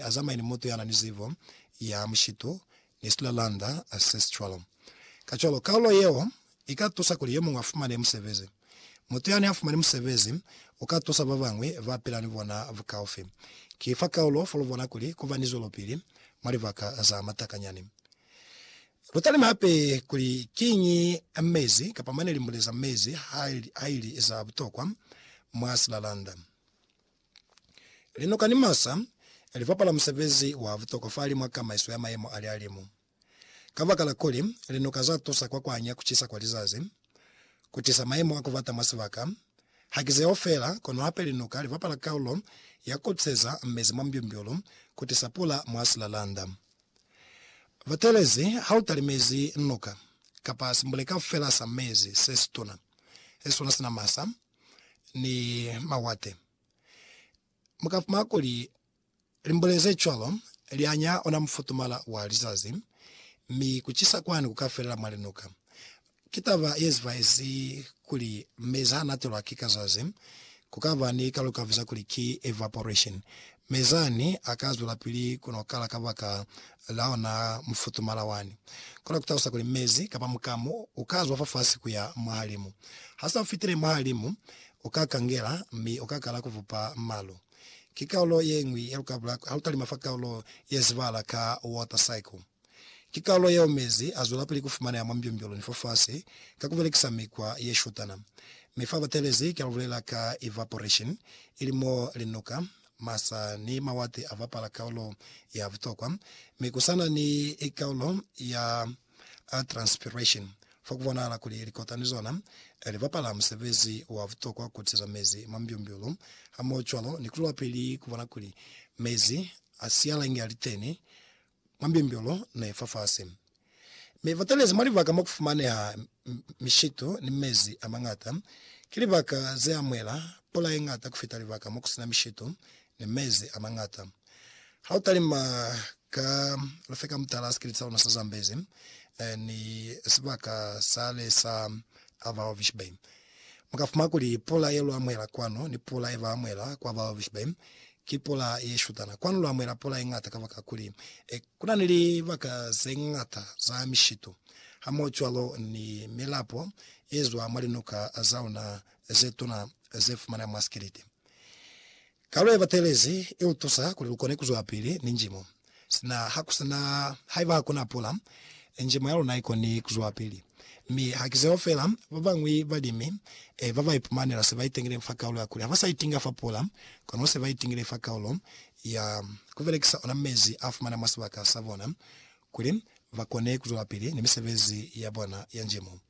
Azamaye ni mutu yanani zibo ya mushitu ni silalanda, ancestral. Kacwalo, kaulo yeo ika tusa kuli yomuñwi afumane musebezi. Mutu yani afumani musebezi uka tusa babañwi bapila ni bona bukaufi. Ki fa kaulo fo lubona kuli kuba ni zwelopili mwa libaka za matakanyani. Lutalime hape kuli kiñi mezi kapa mane limbule za mezi haili za butokwa mwa silalanda. Linoka ni masa li bapala musebezi wa butokwa fahali mwa kamaiso ya mayemo a lihalimu. Kabakala kuli linoka za tusa kwa kuanya kucisa kwa lizazi, ku tisa mayemo a kubata mwa sibaka, haki zeo feela, kono hape linoka li bapala kaulo ya kukopseza mezi mwa mbyumbyulu, ku tisa pula mwa silalanda. Batelezi, ha u talimezi noka, kapa simbuleka feela sa mezi se situna, se sona sina masa, ni mawate. Mu ka fumana kuli limbule ze cwalo li anya ona mufutumala wa lizazi, mi ku cisa kwani ku ka felela mwa linuka. Ki taba ye zibaezi kuli mezi ha natelwa ki kazazi, ku ka ba ni kalukavu za kuli ki evaporation, Mi zani a ka zwelapili ku no kala kabaka la ona mufutumala wani. Kona ku talusa kuli mezi, kapa mukamu, u ka zwa fafasi ku ya mwahalimu. Ha sa fitile mwahalimu, u ka kangela, mi u ka kala ku vupa malu. Ki kaulo ye ñwi ya lukabula ha lu talima fa kaulo ye zibahala ka water cycle. Ki kalulo yeo mezi azwelapili kufumaneha mwa mbyombyolo ni fafasi ka kubelekisa mikwa yeshutana. Mi fa batelezi kia lubulela ka evaporation, ili mo linuka, masa ni mawati abapala kaulo ya butokwa, mi kusana ni kaulo ya transpiration, fa kubonahala kuli likota ni zona libapala musebezi wa butokwa kutiza mezi mwa mbyombyolo hamohocwalo ni kuzwelapili kubona kuli mezi asiala inge aliteni mwa mbyumbyulu ne i fafasi, mi ba talezi mwa libaka mo ku fumaneha mishitu ni mezi a mañata. Ki libaka ze amuhela pula ye ñata ku fita libaka mo ku si na mishitu ni mezi a mañata. Ha u talima ka lufeka mutala sikiliti sa luna sa Zambezi ni sibaka sale sa Avalvich Bay, Mu ka fumana kuli pula ye lu amuhela kwanu ni pula ye ba amuhela kwa Baalbishabaim ki pula ye shutana. Kwanu lu amuhela pula ye ñata kabakakuli ku na ni libaka ze ñata za mishitu hamohocwalo ni milapo ye zwa mwa linuka za luna ze tuna ze fumaneha mwa Skiliti. Kalu yebatelezi ilutusa kuli lukone kuzwapili ni njimo. Sina hakusina haiba hakuna pula, njimo yaluna ikoni kuzwapili. Mi hakizeo feela, babañwi balimi babaipumana se baitengileñi fa kaulo ya kuli haba sa itinga fa pula, kono se baitingile fa kaulo ya kubelekisa ona mezi afumana mwa sibaka sabona kuli bakone kuzwelapili ni misebezi yabona ya njimo.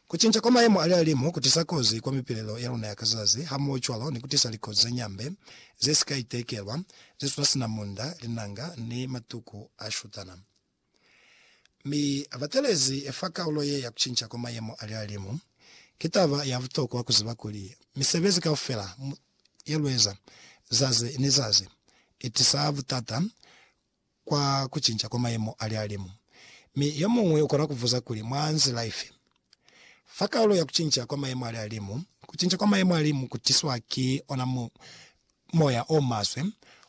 Kucinca kwa mayemo a lihalimu kutisa kozi kwa mipilelo ya luna ya ka zazi, hamohocwalo ni kutisa likozi ze ñambe, ze si ka itekelwa, ze suna sina munda, linanga, ni matuku a shutana. Mi batelezi fa kaulo ye ya kucinca kwa mayemo a lihalimu, ki taba ya butokwa kuziba kuli misebezi kaufela ye lueza zazi ni zazi itisa butata kwa kucinca kwa mayemo a lihalimu. Mi yomuñwi ukona kubuza kuli, Mwa nzila ifi? Fa kaulo ya kucinca kwa mayemo a lihalimu, kucinca kwa mayemo a limu kutiswa ki ona moya o maswe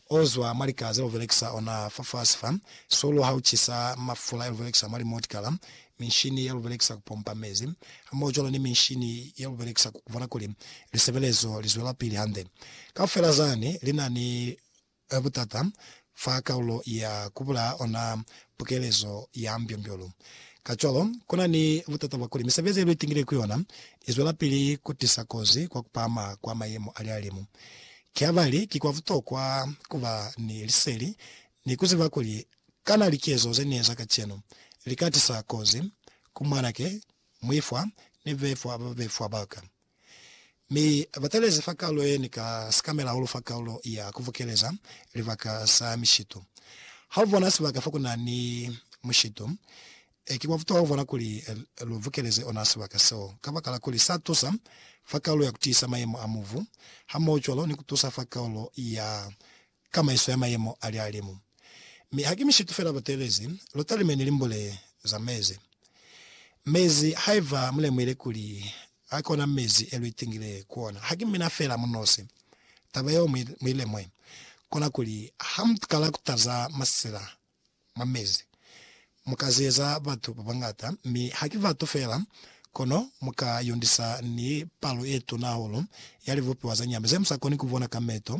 ozwa mwa lika zelubelekisa ona fafasi fa. Sulu haucisa mafula yelubelekisa mwa limotikala, minshini yelubelekisa kupompa mezi, hamohocwalo ni minshini yelubelekisa kubona kuli lisebelezo lizwelapili hande, kaufela zani linani A Butata fa kaulo ya ku bulaa ona pukelezo ya mbyombyo-lu. Kacwalo, ku na ni butata bwa kuli misebezi ye lu itingile ku yona i zwelapili ku tisa kozi kwa ku pahama kwa mayemo a lihalimu. Ki habali ki kwa butokwa ku ba ni liseli ni ku ziba kuli kana likezo ze ni eza kacenu li ka tisa kozi ku mwanake, muifwa, ni befwa ba ba befwa ba ka. Mi ba talezi fa kalulo ye ni ka sikamela hahulu fa kalulo ya kuvukeleza libaka sa mishitu. Ha u bona sibaka fa ku na ni mushitu, ki kwa butuha ku bona kuli lu vukeleze ona sibaka seo, kabakala kuli sa tusa fa kalulo ya kutiisa mayemo a mubu, hamohocwalo ni ku tusa fa kalulo ya ka maiso ya mayemo a lihalimu. Mi haki mishitu fela bateelezi lotalime ni limbule za mezi. Mezi, haiba mulemuhile kuli a kona mezi e luitingile ku ona, haki mina fela munosi. Taba yeo muilemue, kona kuli ha mukala kutaza masila mwa mezi. Mu ka zeza batu ba bañata, mi ha ki batu fela, kono mu ka yundisa ni palo ye tuna hahulu ya libupiwa za nyama ze mu sa koni ku bona ka meto.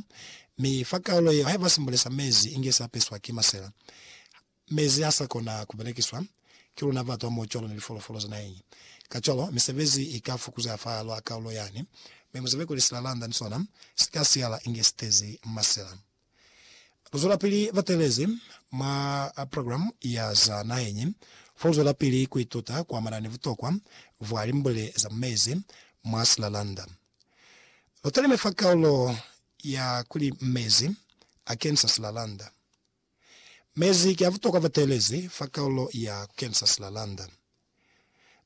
Mi fa kaulo yeo, haiba simbule sa mezi inge sa peswa ki masela, mezi ha sa kona ku belekiswa ki luna batu hamoho cwalo ni lifolofolo za naheñi. Kacwalo, misebezi i ka fukuzeha fahal'a kaulo yani, mi muzebe kuli silalanda ni sona si ka siala inge si tezi masela. Kuzwelapili batelezi mwa progilamu ya za naheñi fo luzwelapili kuituta kuamana ni butokwa bwa limbule za mu mezi mwa silalanda. Lutalime fa kaulo ya kuli Mezi Akenisa Silalanda. Mezi ki abutokwa batelezi fa kaulo ya Kukenisa Silalanda.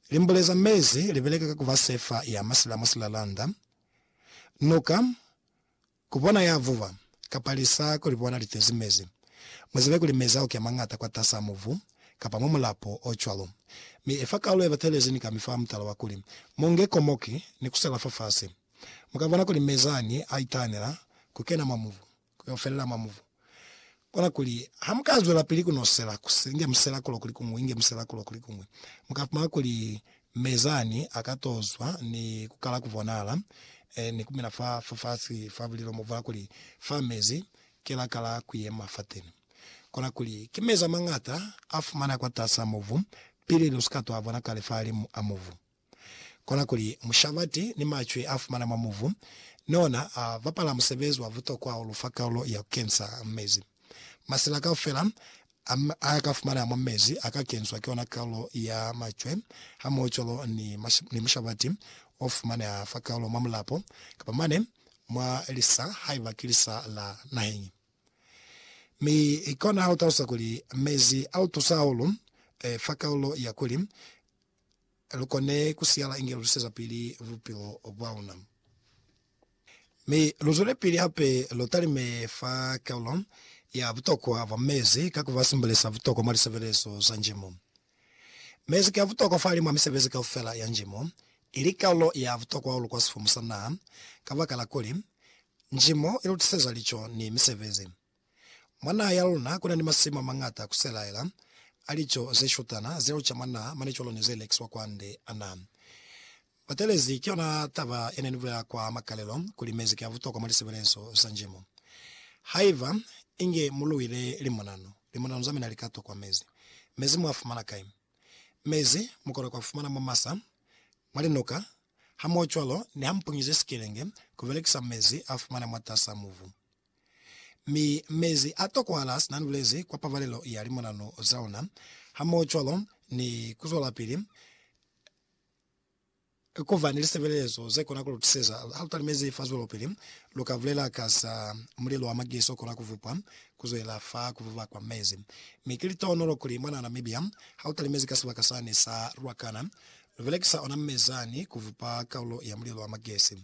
Limbule za mezi libeleka ka kuba sefa ya masila mwa silalanda, nuka, Ku bona ya vuba, kapa lisa ku li bona li tezi mezi. Mu zibe kuli mezi a uke mañata kwatas'a mubu, kapa mwa mulapo o cwalo. Mi efa kalulo ye batelezi ni ka mi fa mutala wa kuli, Mu nge komoki ni ku sela fafasi. Mu ka bona kuli mezi ani a itanela ku kena mwa mubu, ku yo felela mwa mubu. Kona kuli, ha mu ka zwelapili ku nosela, ku si inge musela kulo kuli kuñwi, inge musela kulo kuli kuñwi, mu ka fumana kuli Mezani a ka to zwa ni ku kala ku bonala, eh, ni ku mina fa, fa fasi fa bulilo mo bwa kuli, Fa mezi, ki la kala ku yema fateni. Kona kuli, ki mezi a mañata a fumaneha kwatas'a mubu, pili lu si ka to a bona kale fahalimu a mubu. Kona kuli mushabati ni macwi a fumana mwa mubu ni ona a bapala musebezi wa butokwa hahulu fa kalulo ya ku kensa mezi. Masela kaufela a a ka fumanaa mwa mezi a ka kenswa ki ona kalulo ya macwe hamohocwalo ni ni mushabati o fumaneha fa kalulo mwa mulapo kapa mane mwa lisa haiba ki lisa la naheñi. Mi kona ha u talusa kuli mezi a u tusa hahulu fa kalulo ya kuli lu kone ku siyala inge lu tusezapili bupilo bwa luna. Mi lu zwelepili hape lu talime fa kaulo ya butokwa bwa mezi ka ku ba simbulisa butokwa mwa lisebelezo za njimo. Mezi ki a butokwa fahali mwa misebezi kaufela ya njimo, ili kaulo ya butokwa hahulu kwa sifumu sa naha, kabakala kuli, njimo i lu tiseza lico ni misebezi. Mwa naha ya luna kuna ni masimu amañata kuselaela a lico zeshutana ze luca mwa naha mane cwalo ni ze lekiswa kwande. Ana batelezi ki yona taba yene ni bulela kwa makalelo kuli mezi ki a butokwa mwa lisebelezo za njimo. Haiba inge mu luile limonano, limonano za mina li ka tokwa mezi. Mezi mu a fumana kai? Mezi mu kona ku a fumana mwa masa, mwa linuka, hamohocwalo ni ha mu punyize sikelenge ku belekisa mezi a fumana mwatas'a mubu. Mi mezi a tokohala sina ni bulezi kwa pabalelo ya limonanu za ona, hamohocwalo ni kuzwelapili kuba ni lisebelezo zekona kulutuseza halutalimezi fa zwelopili. Luka bulela ka za mulilo wa magesi okona kuvupwa kuzwela fa kuvuba kwa mezi. Mi ki litohonolo kuli mwana Namibia halutalimezi ka sibaka sani sa Ruacana lubelekisa ona mezani kuvupa kaulo ya mulilo wa magesi.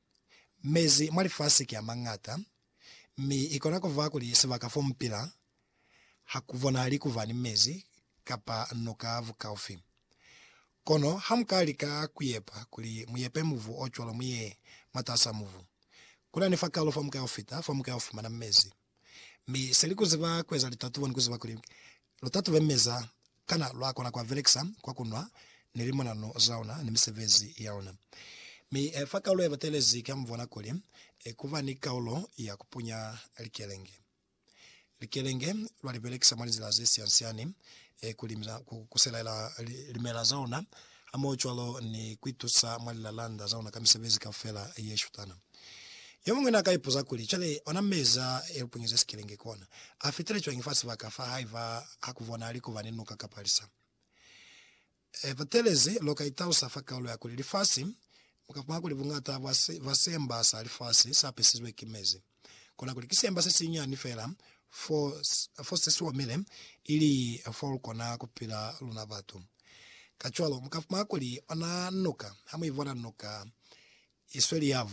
Mezi mwa lifasi ki a mañata, mi i kona ku ba kuli sibaka fo mu pila ha ku bonahali ku ba ni mezi kapa nuka bukaufi. Kono ha mu ka lika ku yepa kuli mu yepe mubu o cwalo mu ye mwatas'a mubu, ku na ni fakalo fa mu ka yo fita, fa mu ka yo fumana mezi. Mi se li kuziba kueza litatubo ni kuziba kuli lutatube meza kana lwa kona kua belekisa kwa kunwa ni limonano zaona ni misebezi yaona. Mi fa kaulo ya batelezi kia mubona kuli kuba ni kaulo ya kupunya likelenge. Likelenge lwa libelekisa mwa linzila ze siansiani kuli ku kuselaela limela zaona hamohocwalo ni kuitusa mwa lilalanda zaona ka misebezi kaufela yeshutana. Yomuñwi naaka ipuza kuli, Cwale, ona mezi a elupunyeze sikelenge kona, afitile cwañi fa sibaka fa haiba hakubonahali kuba ni nuka kapa lisa? E, batelezi, loka italusa fa kaulo ya kuli lifasi, kuli bungata bwa basemba sa lifasi, saapesizwe ki mezi. Kona kuli ki semba se sinyani fela fo, fo se si omile, ili fo lu kona ku pila luna batu. Kacwalo, mu ka fumana kuli ona nuka, ha mu ibona nuka, i sweli ya.